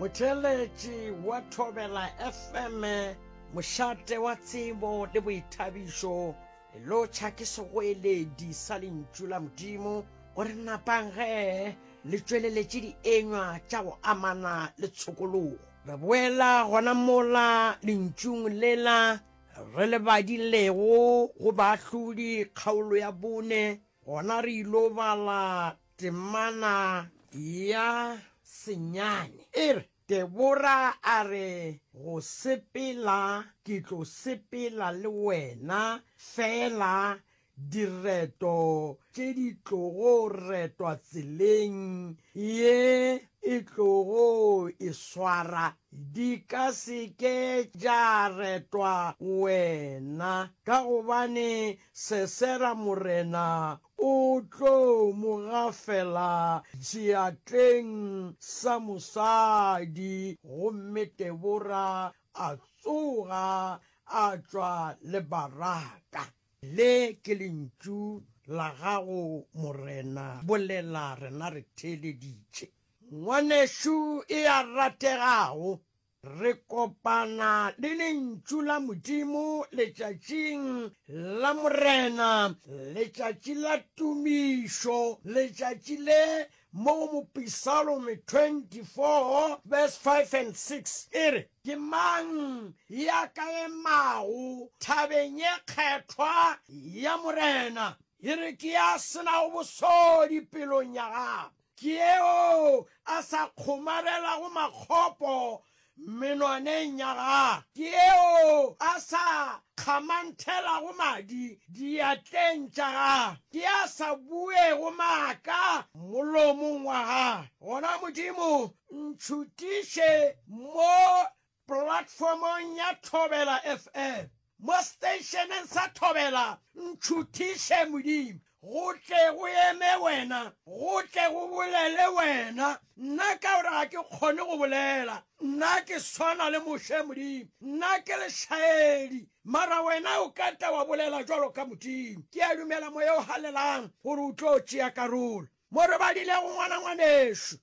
Motheeletši wa Thobela FM, mošate wa tsebo le boithabišo, lotšha ke segoeledi sa lentšu la Modimo gore napang ge le tšweleletše dienywa tša go amana le tshokologo. Re boela gona mola lentšung lela re le badilego go baahlodi kgaolo ya bone, gona re ilo bala Temana ya senyane e re, Debora a re go sepela ke tlo sepela le wena fela direto tše di tlogo retwa tseleng ye e tlogo e swara di ka se ke tša retwa wena ka gobane Sesera morena O tlo mo gafela seatleng sa mosadi. Gomme Debora a tsoga a tšwa le Baraka. Le ke lentšu la gago, Morena, bolela, rena re theeleditše. Ngwanešu e a rategago. Re kopana le Lentšu la Modimo letšatšing la Morena, letšatši la tumišo, letšatši le mo go Mopisalome 24 verse 5 and 6 e re, Ke mang ya ka emago thabeng ye kgethwa ya Morena? E re, Ke ya se nago bosodi pelong ya gagwe. Ke yeo a sa kgomarelago makgopo menwaneng ya gagwe. Ke yeo a sa kgamanthelago madi diatleng tša gagwe. Ke ya sa buego maaka molomong wa gagwe. Gona Modimo, ntšhutiše mo Polatfomong ya Thobela FM, mo seteišeneng sa Thobela, Ntšhuthiše Modimo, go tle go eme Wena, go tle go bolele Wena. Nna ka gore ga ke kgone go bolela, nna ke swana le Moshe Modimo, nna ke lešaedi, mara Wena o ka tla wa bolela bjalo ka Modimo. Ke a dumela Moya o Halelang gore o tlo tšea karolo. Mo re badilego, ngwana ngwanešu.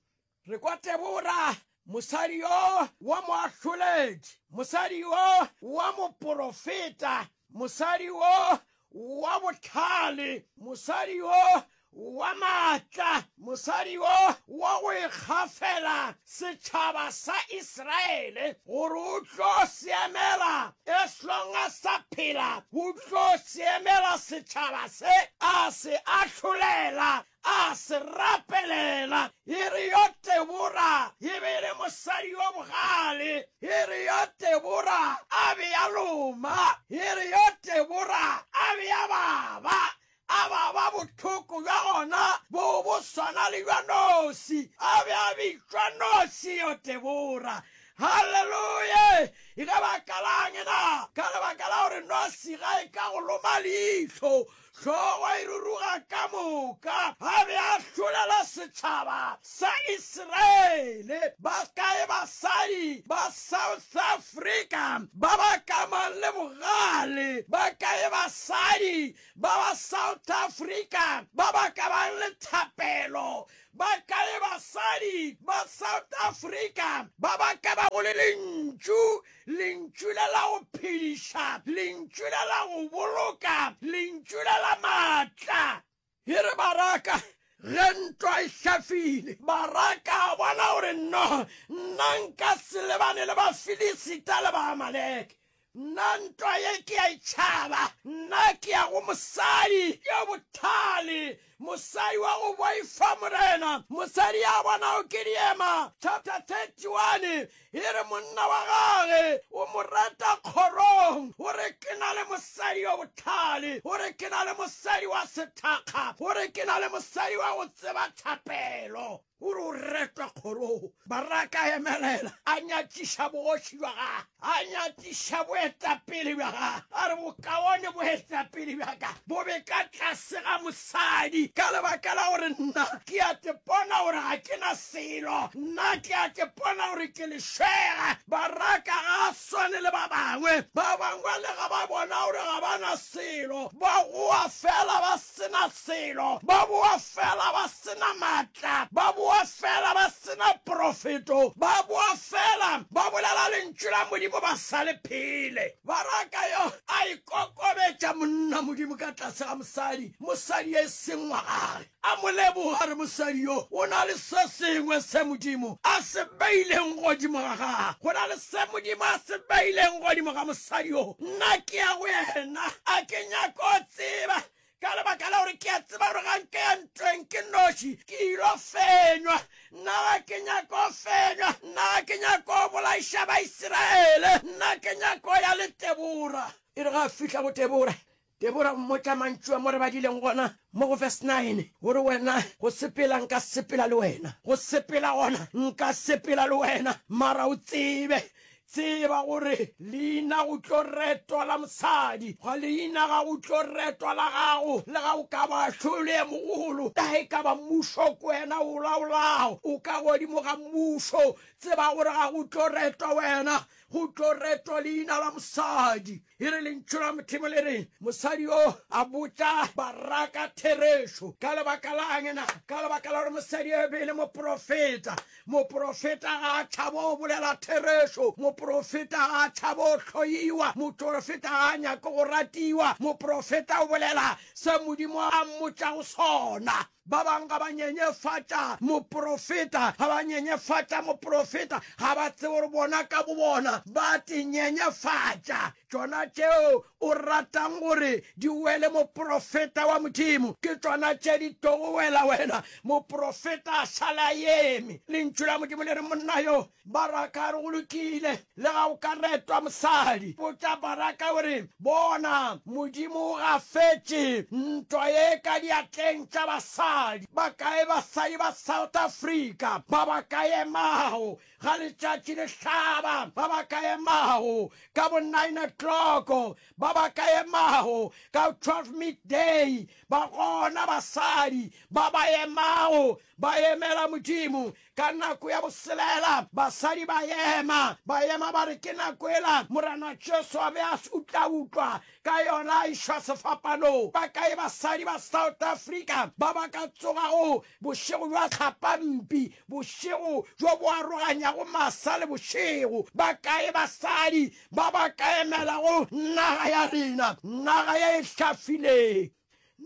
Re kwa Tebora, mosadi yo wa moahloledi, mosadi yo wa moporofeta, mosadi yo wa bohlale, mosadi yo wa maatla, mosadi yo wa go ikgafela, setšhaba sa Israele, gore o tlo seemela, as long a sa phela, o tlo seemela setšhaba se, a se ahlolela, A se rapelela. E re yo Tebora e be e le mosadi yo bogale. E re yo Tebora a be a loma. E re yo Tebora a be a baba, a baba bohloko bja gona bo bo swana le bja noši. A be a bitšwa Noši yo Tebora. Haleluya! Ge ba ka la'ng na? Ka lebaka la gore noši ga e ka go loma leihlo. Hlogo e ruruga ka moka. A be a hlolela setšhaba sa Isiraele. Bakae basadi ba South Africa ba ba kamang le bogale? Bakae basadi ba ba South Africa ba ba kamang le thapelo? Bakae basadi ba South Africa ba ba kamago le lentšu Lentšu la la go phediša, Lentšu la la go boloka, Lentšu la la maatla. E re baraka ge ntwa e hlafile, baraka a bona gore nno nna nka se lebane le Bafilisita le Baamaleke. Nna ntwa ye ke a e tšhaba, nna ke ya go mosadi yo bothale Mosadi wa go boifa Morena. Mosadi ya bonago ke diema, chapter 31, e re monna wa gage o mo reta kgorong, o re ke na le mosadi yo bohlale, o re ke na le mosadi wa sethakga, o re ke na le mosadi wa go tseba thapelo. O re o retwa kgorong. Baraka a emelela, a nyatiša bogoši bja gage, a nyatiša boetapele bja gage, a re, Bokaone boetapele bja ka bo be ka tlase ga mosadi, ka lebaka la gore nna ke a tepona gore ga ke na selo, nna ke a tepona gore ke lešwega. Baraka ga a swane le ba bangwe. Ba bangwe lega ba bona gore ga ba na selo, ba goa feela ba se na selo, ba boa feela ba se na matla, ba boa feela ba se na profeto, ba boa feela ba bolela lentšu la Modimo ba sa le phele. Baraka yo a ikokobetša monna Modimo ka tlase ga mosadi, mosadi e seng wa gage, a mo leboga re mosadi yo o na le se sengwe se Modimo a se beileng godimo ga gage. Go na le se Modimo a se beileng godimo ga mosadi yo. Nna ke ya go yena, a ke nyako tseba ka lebaka la gore ke a tseba gore ga nke ya ntweng ke noši ke ilo fenywa nna ga ke nyako fenywa nna ga ke nyako bolaiša baisiraele nna ke nyako ya le tebora e re ga a fihla go tebora tebora mmotša mantšu a mo re badileng gona mo go verse 9 gore wena go sepela nka sepela le wena go sepela gona nka sepela le wena mara o tsebe Tseba gore leina go tlo retwa la mosadi, ga leina ga go tlo retwa la gago. Le ga o ka ba hlolo e mogolo, le ga e ka ba mmušo ke wena o laolago, o ka godimo ga mmušo, tseba gore ga go tlo retwa wena, go tlo retwa leina la mosadi. E re lentšu la Modimo le re, mosadi yo a botša baraka therešo. Ka lebaka la angena? Ka lebaka la gore mosadi yo e be e le moprofeta. Moprofeta ga a tšhabo go bolela therešo. Moprofeta ga a tšhabo go hloyiwa. Moprofeta ga a nyake go ratiwa. Moprofeta o bolela se Modimo a mmotšago sona. Ba bang ga ba nyenyefatša moprofeta, ga ba nyenyefatša moprofeta, ga ba tsebe gore bona ka bobona ba te nyenyefatša. Tšona tšeo o ratang gore di wele moprofeta wa Modimo, ke tšona tše di tlogo wela wena, moprofeta a šale a eme. Lentšu la Modimo le re monna yoo Baraka a re, Go lokile, lega o ka retwa mosadi. Botša Baraka o re, Bona, Modimo o gafetše ntwa ye ka diatleng tša basadi. Bakae basadi ba South Africa ba ba ka emago ga letšatši le hlaba, ba ba ka emago ka bo nine o'clock, ba ba ka emago ka twelve midday, ba gona basadi ba ba emago ba emela Modimo Ka nako ya boselela, basadi ba ema, ba ema ba re, Ke nako ela Morena Jesu a be a se utlautlwa ka yona a išwa sefapanong. Ba kae basadi ba South Africa ba ba ka tsogago bošego bja tlhapampi, bošego bjo bo aroganyago masa le bošego? Ba kae basadi ba ba ka emelago naga ya rena, naga ye e hlafileng?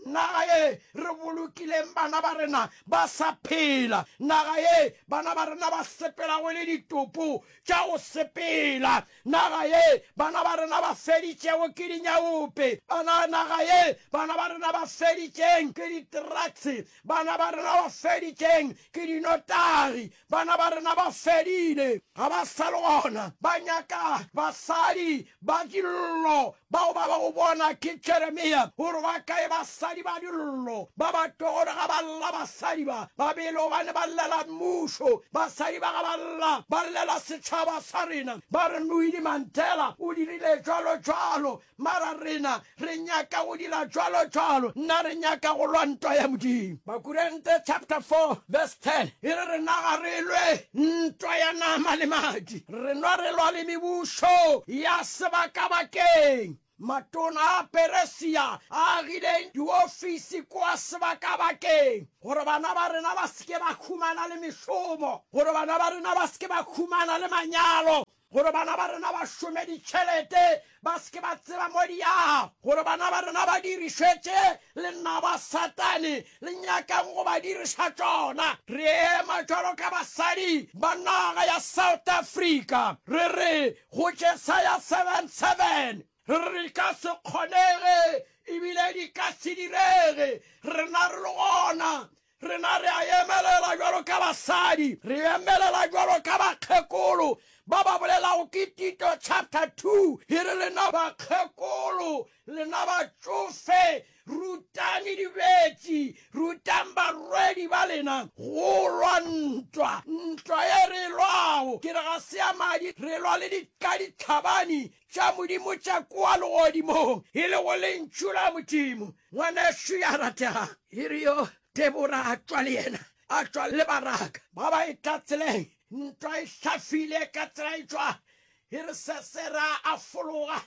Naga ye re bolokileng bana ba rena ba sa phela, naga ye bana ba rena ba sepelago e le ditopo tša go sepela, naga ye bana ba rena ba feditšego ke dinyaope, bana, naga ye bana ba rena ba feditšeng ke ditrakse, bana ba rena ba feditšeng ke dinotagi, Bana ba rena ba fedile, ga ba sa le gona. Ba nyaka basadi ba dillo. Bao ba ba go bona ke Jeremia gore ba kae basadi ba dillo. Ba ba tlo gore ga ba lla basadi ba ba bele gobane ba llela mmušo. Basadi ba ga ba lla ba llela setšhaba sa rena. Ba re Nwidi Mandela o dirile bjalo bjalo. Mara rena re nyaka go dira cwalo cwalo, nna re nyaka go lwa ntwa ya Modimo. Bakurente chapter 4 verse 10 e re rena ga re lwe ntwa ya nama le madi, rena re lwa le mebušo ya sebakabakeng. Matona a Peresia a agile diofisi kua sebakabakeng gore bana ba rena ba se ke ba humana le mešomo, gore bana ba rena ba se ke ba humana le manyalo, gore bana ba rena ba šome ditšhelete ba se ke ba tseba mo di ya, gore bana ba rena ba dirišetše lenaba Satane le nyakang go ba diriša tšona. Re ema bjalo ka basadi ba naga ya South Africa, re re go Jesaya 7, 7, Re re di ka se kgonege ebile di ka se direge, rena re le gona Rena re a emelela bjalo ka basadi, re emelela bjalo ka bakgekolo ba ba bolelago ke Tito chapter two, e re, Lena bakgekolo, lena batšofe, rutani dibetši, rutang barwedi ba lena go lwa ntwa. Ntwa ye re e lwago, ke re ga se ya madi, re lwa le dikaditlhabani, tša Modimo tša kwa legodimong, e lego Lentšu la Modimo. Ngwanaxo ya rategang, e re yo Debora a tšwa le yena, a tšwa le Baraka, ba ba etla tseleng, ntwa e hlafile ka tsela e tšwa, e re Sesera a fologa,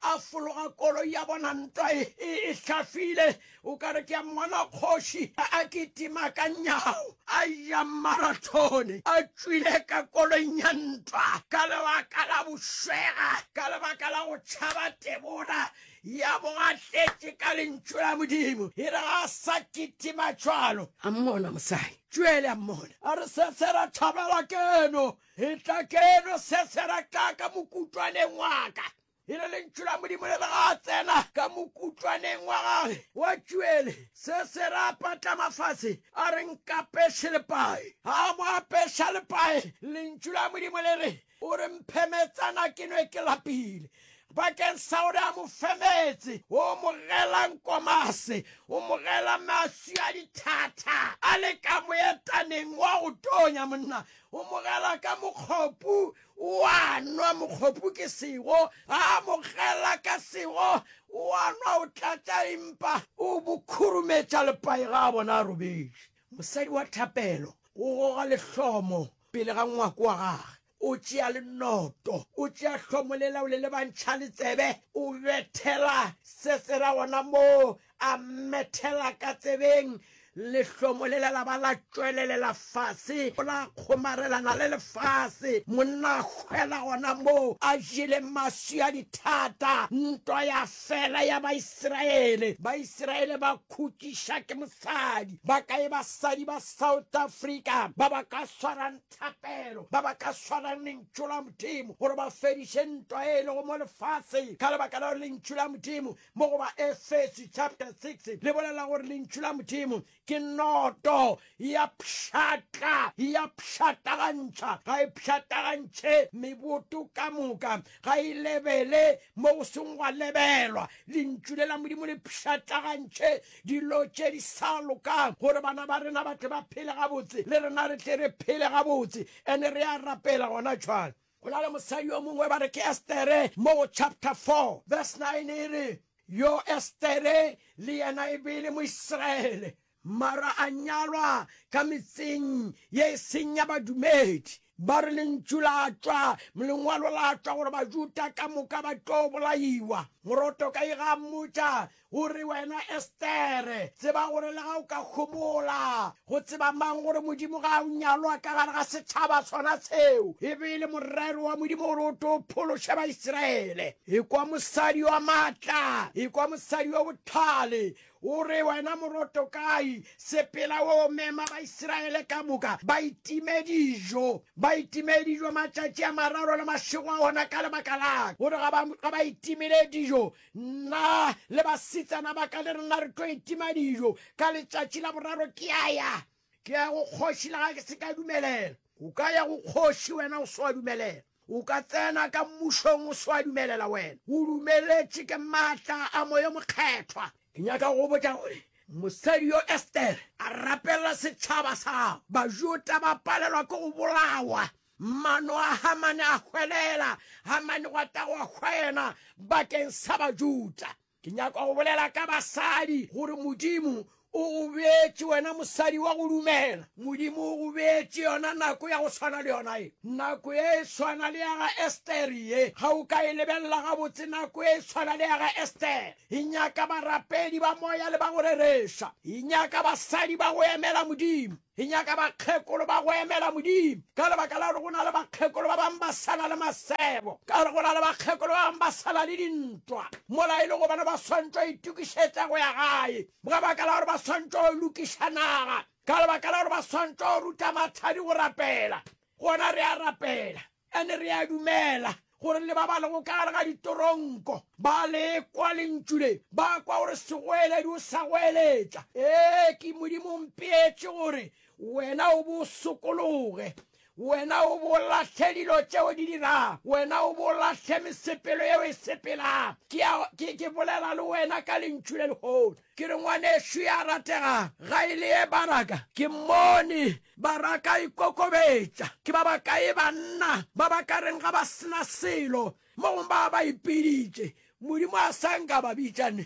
a fologa koloi ya bona, ntwa e, e, e hlafile, O ka re ke a mmona kgoši a kitima ka nyao a ya marathone a tšwile ka koloing ya ntwa ka lebaka la bošwega, ka lebaka la go tšhaba tebora ya bo a tletše ka Lentšu la Modimo. E re ga a sa kitima cwalo. A mmona mosadi cwele, a mmona a re, Sesera, thabela keno, etla keno, Sesera, tla ka mokutwaneng wa ka. e le lentšu la Modimo le bega a tsena ka mokutlwaneng wa gage wa tšuele, se se ra patlama fase a re, Nkapeše lepae. A mo apeša lepae, lentšu la Modimo le re, O re mphe metsana ke nwe ke lapile. Bakeng sa gore a mo fe meetse, o mo gela nkomase, o mo gela maswi a dithatha a le ka moetaneng wa go tonya, monna, o mo gela ka mokgopu O a nwa mokgopu ke sego, a mo gela ka sego, o a nwa o tlatša empa o bo khurumetša lepai ga a bona a robetše. Mosadi wa thapelo o goga lehlomo pele ga ngwako wa gage, o tšea le noto, o tšea hlomo lela o le lebantšha le tsebe, o bethela se tsela gona moo A mmethela ka tsebeng, lehlomo le la la ba la tšwelelela fase, la kgomarelana le lefase. Monna a hwela gona moo, a jele maswi a dithata. Ntwa ya fela ya Baisiraele. Baisiraele ba khutšiša ke mosadi. Ba kae basadi ba South Africa ba ba ka swarang thapelo, ba ba ka swarang Lentšu la Modimo gore ba fediše ntwa e e lego mo lefaseng? Ka lebaka leo Lentšu la Modimo Mo go Baefeso chapter 6 le bolela gore Lentšu la Modimo ke noto, e a pšhatla, e a pšhatlagantšha, ga e pšhatlagantšhe meboto ka moka, ga e lebele mo go seng gwa lebelwa. Lentšu le la Modimo le pšhatlagantšhe dilo tše di sa lokang gore bana ba rena ba tle ba phele gabotse, le rena re tle re phele gabotse. And re a rapela gona bjale. Go na le mosadi yo mongwe ba re ke Estere, mo go chapter 4 verse 9 e re, Yo Estere le yena e be e le Moisraele, mara a nyalwa ka metseng ye e seng ya badumedi. Ba re lentšu la tšwa lengwalo la tšwa gore Bajuda ka moka ba tlo bolaiwa. Moroto ka ega a mmotša O re, Wena Estere, tseba gore lega o ka homola go tseba mang gore Modimo ga a o nyalwa ka gare ga setšhaba sona seo, e be e le morero wa Modimo gore o tlo phološe Baisiraele. Ekwa mosadi wa matla, ekwa mosadi wa bohlale. O re, Wena Morotokai, sepela o mema Baisiraele ka moka ba itime dijo, ba itime dijo matšatši a mararo le mašego a ona ka lebaka laka, gore ga ba itimile dijo Nna le basetsana ba ka le rena re tlo etima dijo ka letšatši la boraro. Ke a ya, ke ya go kgoši le ga ke se ka dumelela. O ka ya go kgoši wena o swa dumelela? O ka tsena ka mmušong o swa dumelela wena? O dumeletše ke maatla a Moya Mokgethwa. Ke nyaka go go botša gore mosadi yo Estere a rapelela setšhaba sa gago, Bajuda ba palelwa ke go bolawa Mano a Hamane a hwelela, Hamane gwa tagwa gwa yena bakeng sa Bajuda. Ke nyaka go bolela ka basadi, gore Modimo o go beetše wena mosadi wa go dumela. Modimo o go beetše yona nako ya go swana le yona ye. Nako ye e swana le ya ga Estere ye. Ga o ka e lebelela gabotse nako ye e swana le ya ga Estere. E nyaka barapedi ba moya le ba go rereša. E nyaka basadi ba go emela Modimo. Re nyaka bakgekolo ba go emela Modimo ka lebaka la gore go na le bakgekolo ba bangwe ba sa na le masebo, ka gore go na le bakgekolo ba bangwe ba sa na le dintwa. Mola e le gobane ba swantšwa go itokišetša go ya gae ka baka la gore ba swantšwa go lokiša naga, ka lebaka la gore ba swantšwa go ruta mathadi go rapela, gona re a rapela. And re a dumela gore le ba ba lego ka gare ga ditoronko ba le kwa lentšu le, ba kwa gore segoeledi o sa goeletša. Ee, ke Modimo o mpeetše gore wena o bo sokologe, wena o bo lahle dilo tše o di dirago, wena o bo lahle mesepelo ye o e sepelago. Ke, ke, ke bolela le wena ka lentšu le lehono. Ke re, Ngwanešu ya ratega, ga e le ye baraka? Ke mmone baraka a ikokobetša. Ke ba bakae banna ba ba ka reng ga ba se na selo mo gong ba ba ipiditše? Modimo a sa nka ba bitša ne?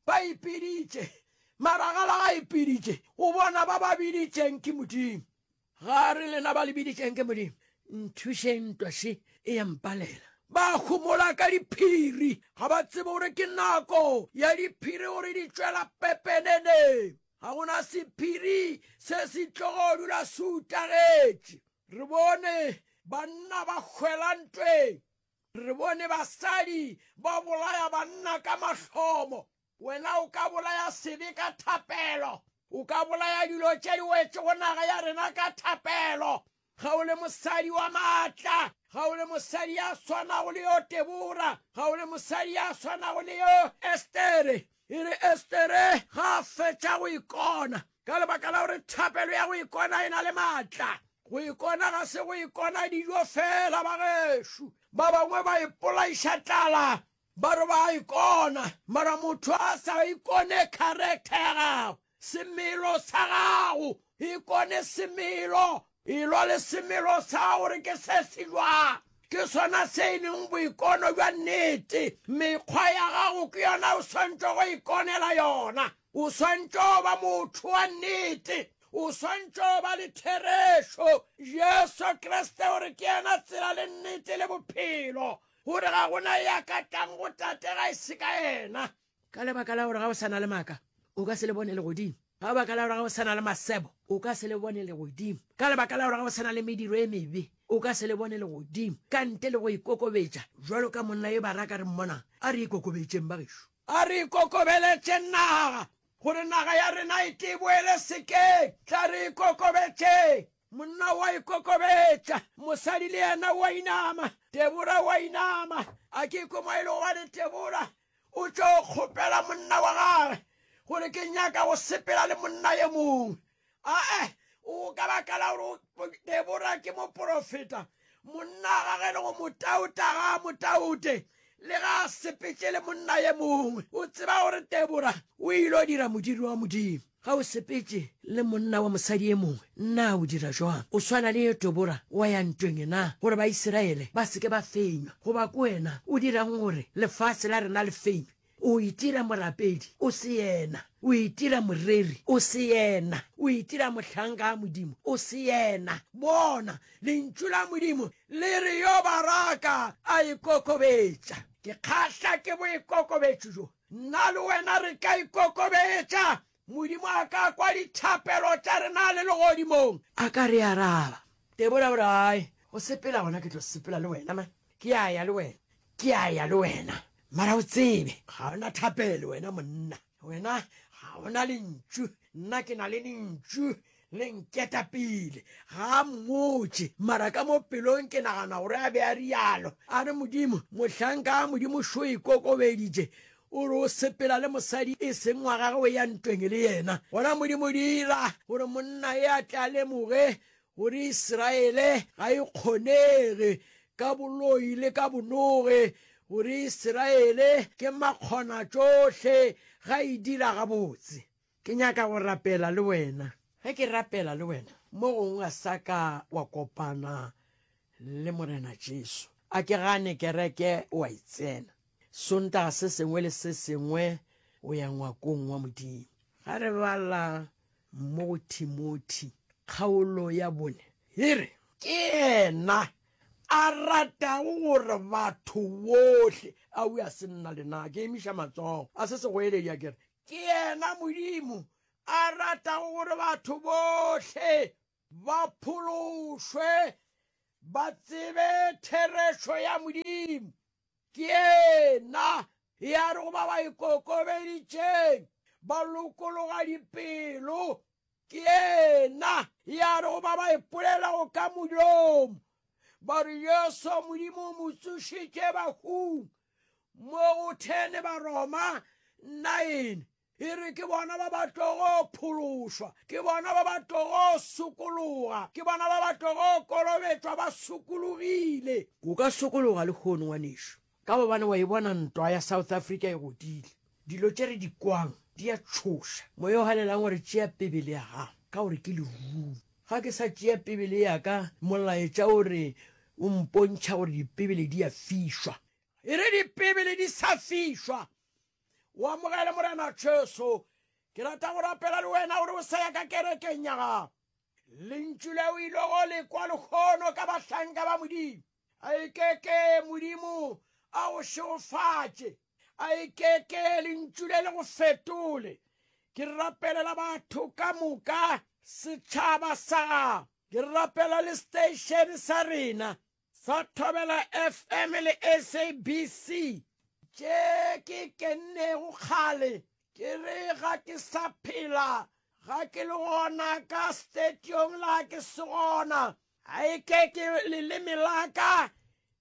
Ba ipiditše. Maragala ga a ipiditše. O bona ba ba biditšeng ke Modimo. Ga re lena ba lebiditšeng ke Modimo, nthušeng ntwa še e ya mpalela. Ba homola ka diphiri, ga ba tsebe gore ke nako ya diphiri gore di tšwela pepenene. Ga go na sephiri se se tlogo dula se utagetše. Re bone banna ba hwela ntweng, re bone basadi ba bolaya banna ka mahlomo. Wena o ka bolaya sebe ka thapelo. O ka bolaya dilo tše di wetšego naga ya rena ka thapelo. Ga o le mosadi wa maatla. Ga o le mosadi ya swanago le yo Debora. Ga o le mosadi ya swanago le yo Estere. E re Estere ga a fetša go ikona, ka lebaka la gore thapelo ya go ikona e na le maatla. Go ikona ga se go ikona dijo feela, bagešo. Ba bangwe ba ipolaiša tlala Ba re ba a ikona, mara motho a sa ikone character ya gagwe, semelo sa gago, ikone semelo, elo le semelo sa gore ke se se jwang. Ke sona se e leng boikono bja nnete. Mekgwa ya gago ke yona o swantšego go ikonela yona. O swantše go ba motho wa nnete. O swantše go ba le therešo. Jesu Kriste o re ke yena tsela le nnete le bophelo. gore ga gona ya ka tlang go tate ga e se ka yena ka lebaka la gore ga o sa na le maaka o ka se le bone legodimo ka lebaka la gore ga o sa na le masebo o ka se le bone legodimo ka lebaka la gore ga o sa na le mediro e mebe o ka se le bone legodimo ka nte le go ikokobetša jalo ka monna yo baraka re mmonang a re ikokobetšeng bagešo a re ikokobeletseng naga gore naga ya rena e teboele sekeng tla re ikokobetšeng Monna o a ikokobetša, mosadi le yena o a inama, Debora o a inama. A ke kwe mo e lego gane Debora o tšo kgopela monna wa gage gore ke nyaka go sepela le monna ye mongwe. Ae, o ka baka la gore Debora ke moporofeta. Monna ga ge le go motauta ga a motaute, le ga a sepetše le monna ye mongwe. O tseba gore Debora o ile o dira modiro wa Modimo. Ga o sepetše le monna wa mosadi ye mongwe, na o dira jwang? O swana le ye Debora wa ya ntweng e na gore Baisiraele ba se ke ba fenywa. Goba ke wena o dirang gore lefase la rena le fenywe? O itira morapedi, o se yena. O itira moreri, o se yena. O itira mohlanka a Modimo, o se yena. Bona, Lentšu la Modimo le re, Yo baraka a ikokobetša. Ke kgahla ke boikokobetšo bjo. Nna le wena re ka ikokobetša Modimo a ka kwa dithapelo tša rena le legodimong. A ka re araba. Debora o re, Ai, go sepela gona ke tlo sepela le wena, man. Ke a ya le wena. Ke a ya le wena. Mara o tsebe, ga o na thapelo wena monna. Wena ga o na lentšu. Nna ke na le lentšu. Le nketa pele. Ga a mmotše, mara ka mo pelong ke nagana gore a be a realo. A re, Modimo, mohlanka a Modimo šo ikokobeditše, o re o sepela le mosadi e seng wa gagwe, o ya ntweng le yena. Gona Modimo dira gore monna e a tle a lemoge gore Israele ga e kgonege, ka boloi le ka bonoge, gore Israele ke makgonatšohle, ga e dira gabotse. Ke nyaka go rapela le wena. Ge ke rapela le wena. Mo gongwe ga sa ka wa kopana le Morena Jesu. A ke gane kereke o a e tsena. Sontaga se sengwe le se sengwe o ya ngwakong wa Modimo. Ga re bala mo go Timothi kgaolo ya bone, e re. Ke yena a ratago gore batho bohle. Awi a se nna le na ke emiša matsogo. A se segoeledi a ke re, Ke yena Modimo a ratago gore batho bohle ba phološwe, ba tsebe therešo ya Modimo. Ke yena ya re go ba ba ikokobeditšeng ba lokologa dipelo, ke yena ya re go ba ba ipolelago ka molomo ba re Jesu Modimo o mo tsošitše bahung, Mo go 10 Baroma 9 e re ke bona ba ba tlogo phološwa, ke bona ba ba tlogo sokologa, ke bona ba ba tlogo kolobetšwa ba sokologile. O ka sokologa lehono, ngwanešu, ka gobane wa e bona ntwa ya South Africa e godile. Dilo tše re di kwang di a tšhoša. Moya o galelang o re tšea Bibele ya gago ka gore ke leruri. Ga ke sa tšea Bibele ya ka, molaetša o re o mpontšha gore Dibibele di a fišwa. E re Dibibele di sa fišwa, o amogele Morena Jesu. Ke rata go rapela le wena gore o sa ya ka kerekeng ya gago. Lentšu le o ilego o le kwa lehono ka bahlanka ba Modimo. A e ke ke Modimo a go šegofatše. A e ke ke Lentšu le le go fetole. Ke rapelela batho ka moka, setšhaba sa gago. Ke rapela le seteišene sa rena sa Thobela FM le SABC. Tše ke kennego kgale ke re ga ke sa phela, ga ke le gona ka stetiong la ke se gona, A e ke ke leleme la ka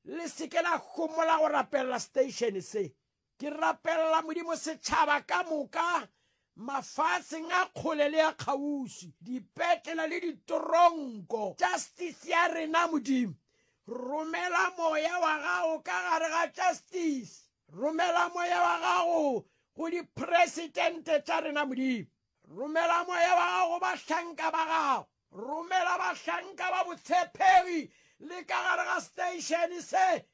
le se ke la gomola go rapelela station se. Ke rapelela Modimo setšhaba ka moka, mafaatseng a kgole le a kgauswi, dipetlela le ditoronko. Justice ya rena, Modimo. Romela Moya wa Gago ka gare ga Justice. Romela Moya wa Gago go dipresidente tša rena, Modimo. Romela Moya wa Gago go bahlanka ba Gago. Romela bahlanka ba botshepegi le ka gare ga seteišene se,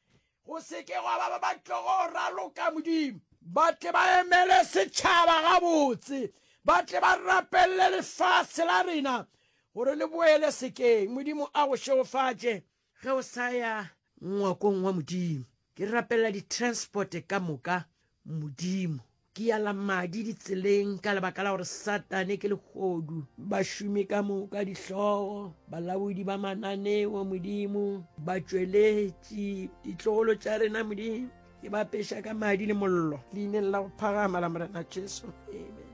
go se ke gwa ba ba ba tlogo raloka, Modimo. Ba tle ba emele setšhaba gabotse. Ba tle ba rapelele lefase la rena gore le boele sekeng. Modimo a go šegofatše. Ge o sa ya ngwakong wa Modimo, ke rapela ditransporte ka moka, Modimo. Ke yala madi ditseleng ka lebaka la gore Satane ke lehodu. Bašomi ka moka, dihlogo, balaodi ba mananeo, Modimo, batšweletši, ditlogolo tša rena, Modimo. Ke ba peša ka madi le mollo, leineng la go phagama la Morena Jesu. Amen.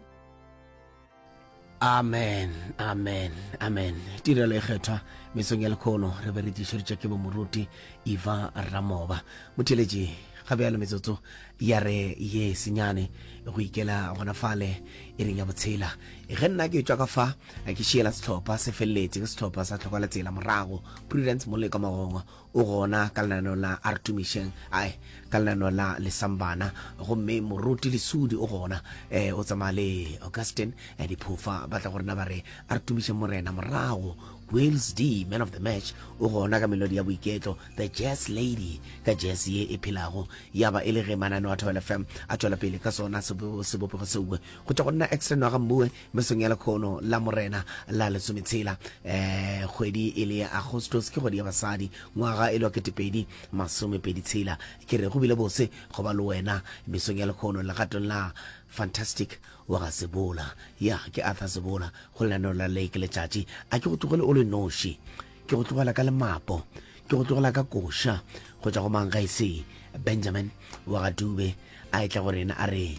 amen amen amen tirelo e kgethwa mesong ya lekgono re be re tlišeditše ke bomoruti eva ramoba motheletši ga bjalo metsotso ya re ye senyane go ikela gona fale e reng ya botshela ge nna ke tswa ka fa ke šiela setlhopha se feleletse ke setlhopha sa tlhokwala tsela morago prudence moleka magongo O gona ka lenaneo la Artumisheng, ae, ka lenaneo la Lesambana, gomme Moruti Lesudi o gona, e, o tsamaya le Augustine, e, diphofa, ba tla go rena ba re, Artumisheng Morena, morago, Wales D, Man of the Match, o gona ka melodi ya boiketlo, The Jazz Lady, ka jazz ye e phelago, ya ba e le ge mananeo a Thobela FM a tšwela pele ka sona sebopego seue. Go tšwa go nna Extra Nwaga Mmue, Mesong ya lekhono la Morena la lesometshela, eh, kgwedi e le ya Agostos, ke kgwedi ya basadi, ngwaga e le wa ketepedi masomepedi tshela. Ke re, go bile bose go ba le wena mesong ya lekhono legatong la Fantastic wa ga Sebola. Ya, ke Arthur Sebola, go lenaneo la Lake Letšatši. A ke go tlogele o le noši? Ke go tlogela ka lemapo, ke go tlogela ka koša, go tšwa go mang ga e se Benjamin wa ga Dube a etla go rena a re,